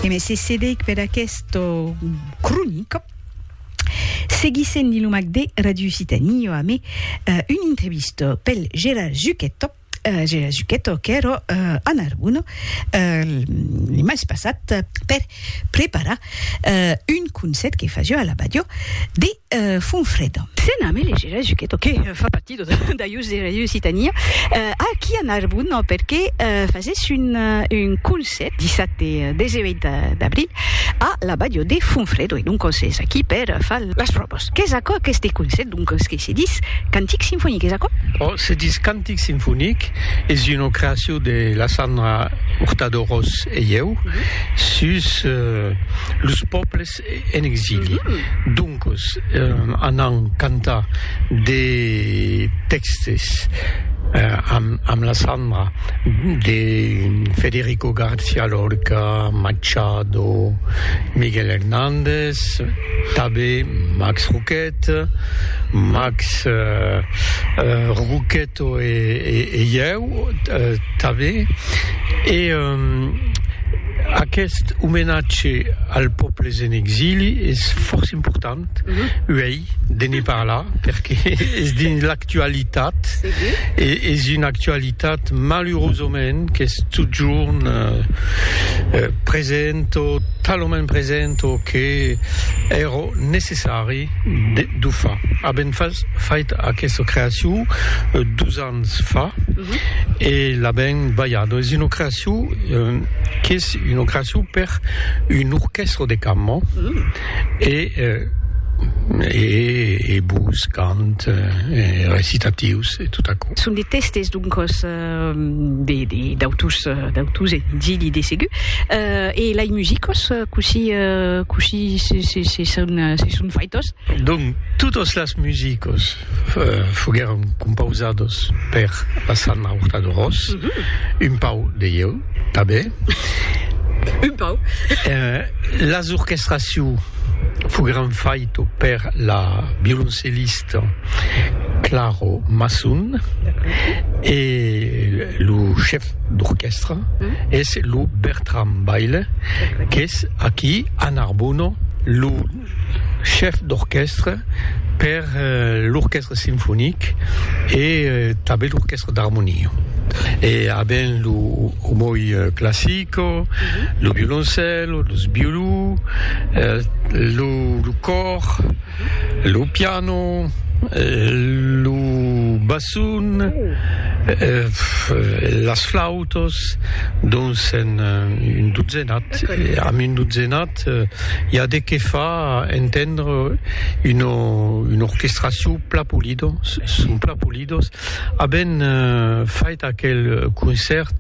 E me se cedeic per aquesta cronica. Seguissent dins lo mac de Radio Occitanie, jo amé una entrevista pel Gérard Zucchetto, Gérard Zucchetto qu'èra a Narbona, li mas passat per Prepara un conset que fasió a l'abadió de Fonfreda. Se name le Gera Juchetto, que fa partido d'Aius Gera e Lusitania, a qui a Narbon perque fasés un conset dissate 18 d'abril a l'abadió de Fonfredo e donc s'es aquí per far las pròvas. Qu'es aquò aqueste conset donc que se dis Cantic Sinfonic, es aquò? Òc, se dis Cantic Sinfonic, es una creacion de la Sandra Hurtado Ros. E ieu sus los pòbles en exili. Doncos anam cantar de tèxtes amb la Sandra de Federico García Lorca, Machado, Miguel Hernández, tanben Max Roquette, Max Roquette. To e ieu tanben. E aqueth omenatge als pòbles en exili es fòrça important uei de ne parlar, perque es dins l'actualitat, e es una actualitat malurosament qu'es totjorn present o talament present o que èra necessari. de Dufa. Avèm fas, fait aquesta creacion dus ans fa e l'avèm balhada. Es una creacion, qu'es una creacion per un orquèstra de cambra e e e bus, cant, recitatius e tot aquò. Son de tèstes, doncas. de d'autus d'autus e d'illi de segur euh, e lai musicos cossí cossí se se se son se son faitos? Donc totos las musicos foguèron compausados per la Sanna Hurtado-Ros, un pau de ieu tanben, un pau las orchestraciu foguèron faito per la violoncellista, Claro Masson e lo chef d'orquèstra es lo Bertram Baile qu'es aquí a Narbona lo chef d'orquèstra per l'orquèstra sinfonic e tanben l'orquèstra d'armonia e aben lo omoi classico, lo violoncèlo, los violons, lo còr. Lo piano, lo basson, las flautas, dons en un dotzenat, amb un dotzenat i a de qué fa entendre una orquestracion plan polida, son plan polidas. Avèm fait aquel concèrt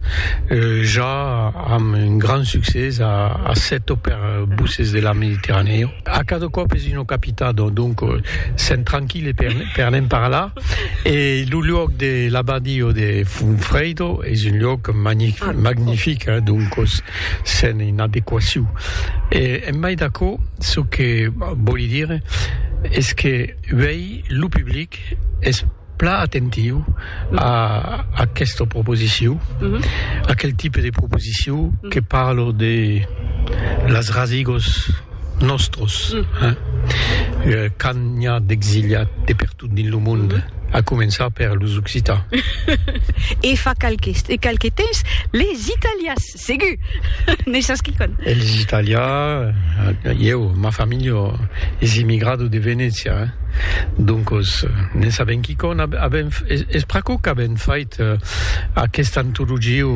ja amb un grand succès a Assetto per Buses de la Mediterranèo. A cada còp es una capità, donc sèm tranquille per ne'n parlar. E lo luòc de l'Abadio de Funfredo es un luòc magnific, donc sèm en adequacion. E en mai d'aquò, çò que vòli dire es que uèi lo public es. plan atentiu a aquesta proposiciu, aquel tipe de proposiciu que parlo de las rasigos nòstros, quand n'i a d'exiliat de pertot dins lo monde, a començar per los occitans. E fa qualques temps, les italians. Segur! N'es sas quicòm. Eles italians, ieu, ma familha es emigrada de Venècia, doncos n'en sabèm quicòm. Avèm, es pr'aquò qu'avèm fait aquesta antologia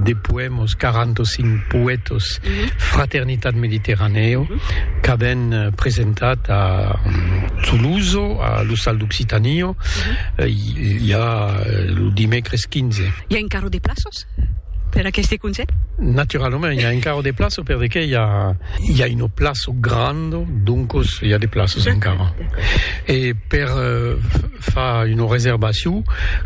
de poèmas, 45 poètas, Fraternitat Mediterranèa, qu'avèm presentat a Toulouse, a l'Ostal d'Occitània, i a lo dimècres 15. I a encara de plaças? Per aqueste conselh? Naturalament, i a encara de plaço per de qué i a i a una plaço granda, doncos i a de plaços encara. E per far una reservacion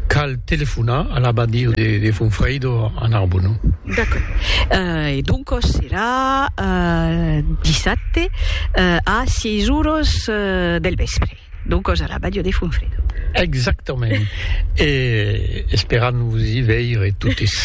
cal telefonar a l'abadia de de Fonfrèido a Narbona. D'accord. E doncos serà dissabte a sièis oras del vèspre. D'o còs a la Bàdia de Fonfredo. Exactament. E esperam vos i veire totes.